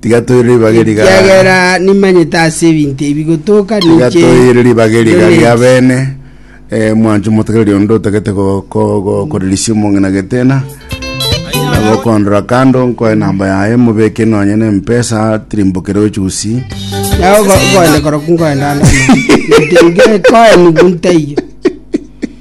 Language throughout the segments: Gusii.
Tiga toire ribaga eriga. Ekiagera nimanyete ase ebinto ebi gotoka Tiga ninche toire ribaga eriga Donate. ria bene. Eh, mwancho motegereri onde otagete go- go- go- korerisia omong'ina getena. Na gokondora kando nkoe namba yaye mobeke nonye na mpesa tirimbokere ochusi. Nao go- goende koroku ngoenda ande amang'ana. Nteige koe nigo ntaiyo.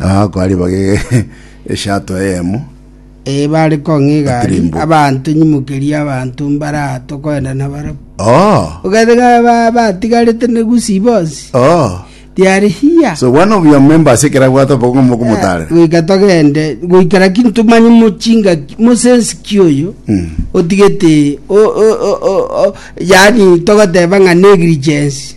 Agakoriba gegeeshato eyemo. Ee, bare kong'iga aria, Katirimbo. abanto, nyimokeria abanto mbaraa tokoenda nabarabwo. Oh, Ogende ng'a ba- batigarete ne Gusii bonsi, oh. tiare hiya. So one of your members ekera bwate obogo mokomotarera. Goika togende, goikera ki ntomanye mochinga ki- mosensi ki oyo, Mm. otigete, o- o- o- o- o- yaani togoteba ng'a negligence.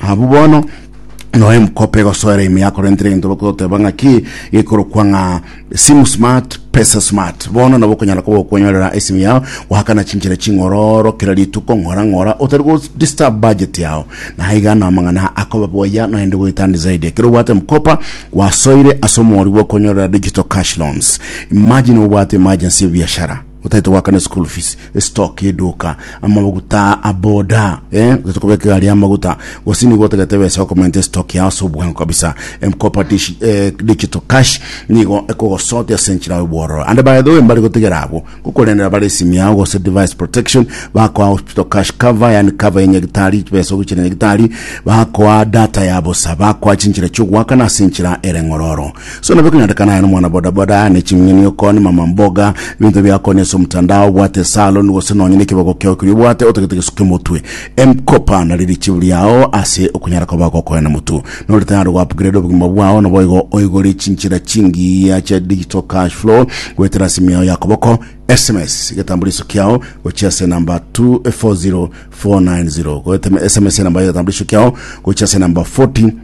Abwo bono noe mkope gosoera ime yakorentire egento bakoteba ng'a ki gekorokwa ng'a simu smart pesa smart bono nabo okonyara koba okonyorera esimu yao goakana chinchera ching'ororo kera rituko ng'ora ng'ora otari go disturb budget yao naye iga na amang'ana akoba boya noende goetandi zaidi ekero obwate mkopa gwasoire ase omori bwa okonyorera digital cash loans imagine obwate emergency biashara Otaete goakana eschool fees, estock y'eduka, amaguta a boda, eh, otaete kobeka egari y'amaguta, gose nigo otagete ebesa ya okomaintain estock yao ase obwango kabisa. M-Kopa dish- eh, Digital Cash nigo ekogosotia ase enchera y'obwororo. And by the way, mbare gotigera abwo ngokorendera bare esimi yao gose device protection, bakoa hospital cash cover, yaani cover ya nyagitari, chibesa ogochera nyagitari, bakoa data ya bosa, bakoa chinchera chi'ogoakana ase enchera ere ng'ororo. So nabio konyorekana aye nomwana bodaboda ne ching'eni okoni mama mboga ebinto biakoni ase omotandao obwate salon gose nonye nekibogo kiao keria obwate otagete gesuka emotwe emkopa nari richibu riao ase okonyara koba gokoena motu nore tayari go upgrade obogima bwao naboigo oigore chinchera chingiya chia digital cash flow goetera ase ime yao ya koboko sms egetambo riso kiao gochia ase namba 240490 goetema sms enamba ya egetambo riso kiao gochia ase namba 40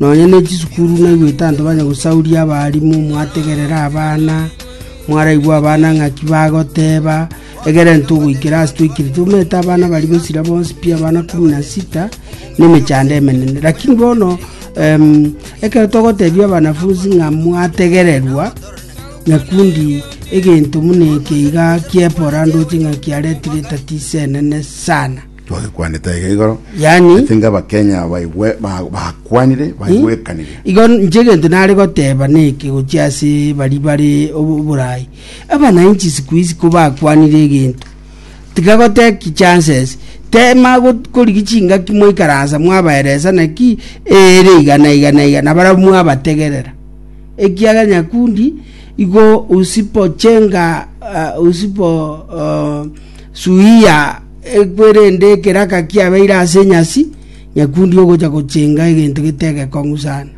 Nonya ne chisukuru naigwete abanto banya gosauria abaalimu, mwategerera abana, mwaraigwa abana ng'aki bagoteeba, egere ntogoikera ase toikire tomeete abana baria b'esira bonsi pi abana kumi na sita nemechando emenene. Lakini bono em, ekero togoteebia abanafunsi ng'a mwategererwa, nyakundi egento muna eke iga kiepora ndoche ng'a kiaretire etatiso enene sana. Twagekwanete aiga igoro, Yaani- ase inga Abakenya baigwe- ba- bakwanire, baigwekanire. Igo inche egento nare goteba neke gochia ase baria bare obo- oboraai, abanainchi siku hizi kobakwanire egento, tiga goteki chances, tema got- korigi chingaki mwaikaransa mwabaeresa naki eere iga na iga na iga na barabwo mwabategerera, ekiagera nyakundi igo usipochenga ah, usipo ah, Suia ekwerende ekeraka kiabeire ase enyasi, nyakundi ogocha gochenga egento getegekong'u sana.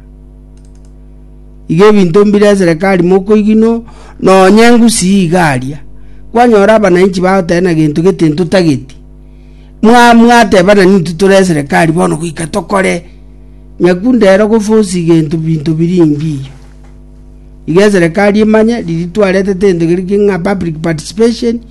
Iga ebinto mbire eserekari mokoigino nonye ngusii iga aria. Kwanyora abananchi bagoteba na gento gete ntotageti. Mwa mwateba na nintu tore eserekari bono goika tokore. Nyakundi ero gofosi gento binto biringi iyo. Iga eserekari emanye riria twarete tente geri ki ng'a public participation,